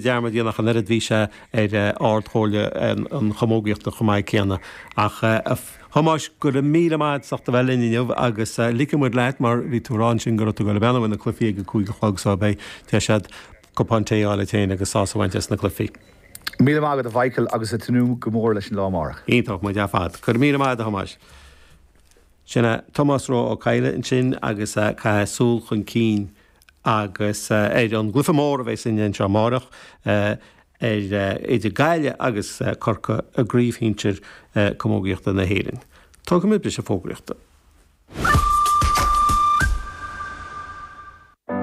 dearmad a dhéanamh ach an oiread bhí sé ar Ard Chomhairle an Chamógaíochta chomh maith céanna. Ach a Thomáis go raibh míle maith agat as a bheith linn inniu agus ligfidh muid leat mar bhí tú a rá ansin go raibh tú ag dul ag breathnú ar na cluifí ag a cúig a chlog so beidh deis agat cupán tae a fháil duit féin agus sásamh a bhaint as na cluifí. Míle maith agat a Mhichael agus ag tnúth go mór leis an lá amárach. Iontach, muid ar fad. Go raibh míle maith agat a Thomáis. Sin é Tomás Rua Ó Cadhla ansin agus caithfidh súil chun cinn. agus ar an gcluiche mór a bheas againn anseo amárach idir Gaillimh agus Corcaigh i gcraobh shinsir camógaíochta na hÉireann. Tógfaimid briseadh fógraíochta.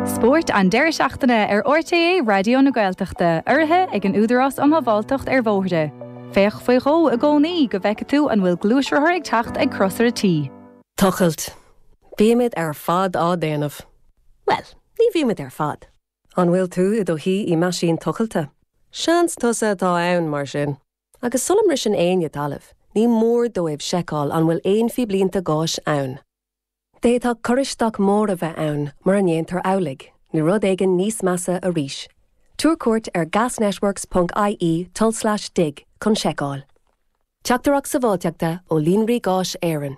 Spórt an deireadh seachtaine ar RTÉ Raidió na Gaeltachta, urraithe ag an Údarás um Shábháilteacht ar Bhóithre. Féach faoi dhó i gcónaí go bhfeicfidh tú an bhfuil gluaisrothar ag teacht ag Crosaire T. Tochailt, Bímid ar fad á déanamh. Bhuel, ní bhímid ar fad. An bhfuil tú i do shuí i meaisín tochailte? Seans tusa atá ann, mar sin. Agus sula mbriseann éinne talamh, ní mór dóibh seiceáil an bhfuil aon phíblínte gáis ann. D'fhéadfadh cur isteach mór a bheith ann mura ndéantar amhlaidh, nó rud éigin níos measa arís. Tabhair cuairt ar gasnetworks ponc IE tulslais dig chun seiceáil. Teachtaireacht Sabháilteachta ó Líonraí Gáis Éireann.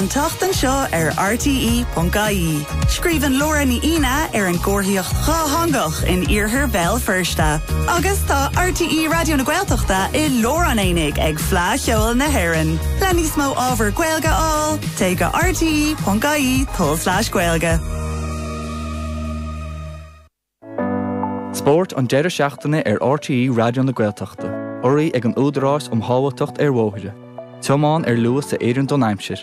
An tseachtain seo ar RTÉ.ie, scríobhann Laura Ní Aoidhne ar an gcomharthaíocht dhátheangach in iarthar Bhéal Feirste. Agus tá RTÉ Raidió na Gaeltachta i lár an aonaigh ag Fleadh Cheoil na hÉireann. Le níos mó ábhar Gaeilge a fháil, téigh go rte.ie/gaeilge. Spórt an deireadh seachtaine ar RTÉ Raidió na Gaeltachta. Urraithe ag an Údarás um Shábháilteacht ar Bhóithre. Tiomáin ar luas a oireann don aimsir.